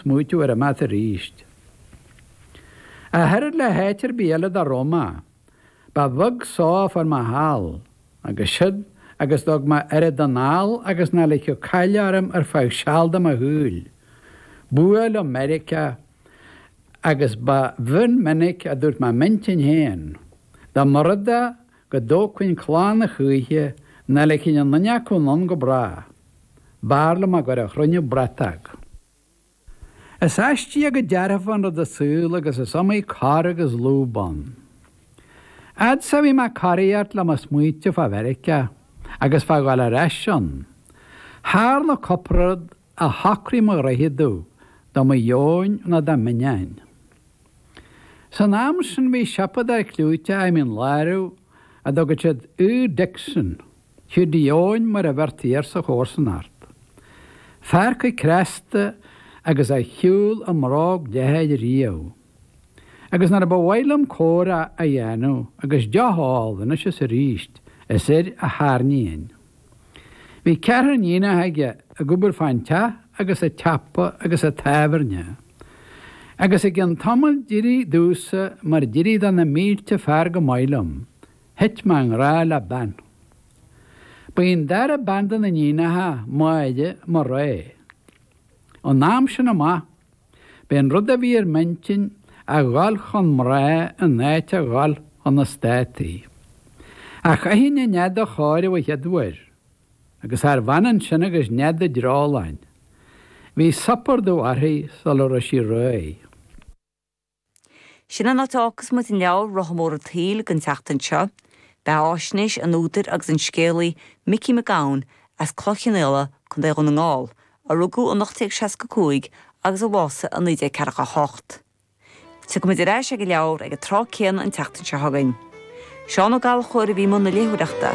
smaoitiú ar imeacht aríst. Ach oiread le háit ar bith eile dá raibh mé, ba bheag só a fuair mé thall, agus siúd agus go dtug mé oiread anall agus nach ligfeadh caill orm ar feadh seal de mo shaol. B'fhuath liom Meiriceá, agus ba mhion minic a dúirt mé i m'intinn féin, dá mba rud é go dtógfainn clann a choíche, nach ligfinn aon duine acu anonn go bráth. B'fhearr liom a gcur a chruinniú bratóg. Is aisteach go dearfa an rud an saol agus is iomaí cor agus lúb ann. Fhad is a bhí mé ag coraíocht le mo smaointe fá Mheiriceá agus fá dhul ar ais ann. Tharla cupla rud a shocraigh mo ghnoithe domh de mo dheoin nó de m'ainneoin. San am sin bhí siopa ag fear cliúiteach i Mín Lárach a dtugadh siad Hugh Dixon. Hiúdaí Eoin mar a bheirtí air sa chomharsanacht. Fear chomh cneasta agus a shiúil i mbróg leathair riamh. Agus nuair a ba mhaith liom comhrá a dhéanamh agus deoch a ól anois is arís, is air a tharraingínn. Bhí ceathrar iníonacha aige ag obair fán teach agus an tsiopa agus an tábhairne. Agus i gcionn tamaill d'éirigh domhsa mar d'éirigh do na mílte fear chomh maith liom, Thit mé i ngrá le bean. Ba í an dara bean de na níonacha, Máire, mo rogha. Ón am sin amach, b'é an rud a bhí ar m'intinn a dhul chun mná in áit a dhul chun na Státaí. Ach chaithfinn an nead a chóiriú a chéaduair, agus charbh ionann sin agus nead an dreoláin. Bhí supardubh uirthi sula raibh sí réidh. Sin an áit a fhágfas muid an leabhar Rotha Mór an tSaoil don tseachtain seo. Beathaisnéis an údair agus an scéalaí Micí Mac Gabhann as Cloich Chionnaola, Co. Dhún na nGall, a rugadh in 1865 agus a bhásaigh in 1948. Tiocfaidh muid ar ais ag an leabhar ag an tráth céanna an tseachtain seo chugainn. Seán Ó Gallchóir a bhí i mbun na léitheoireachta.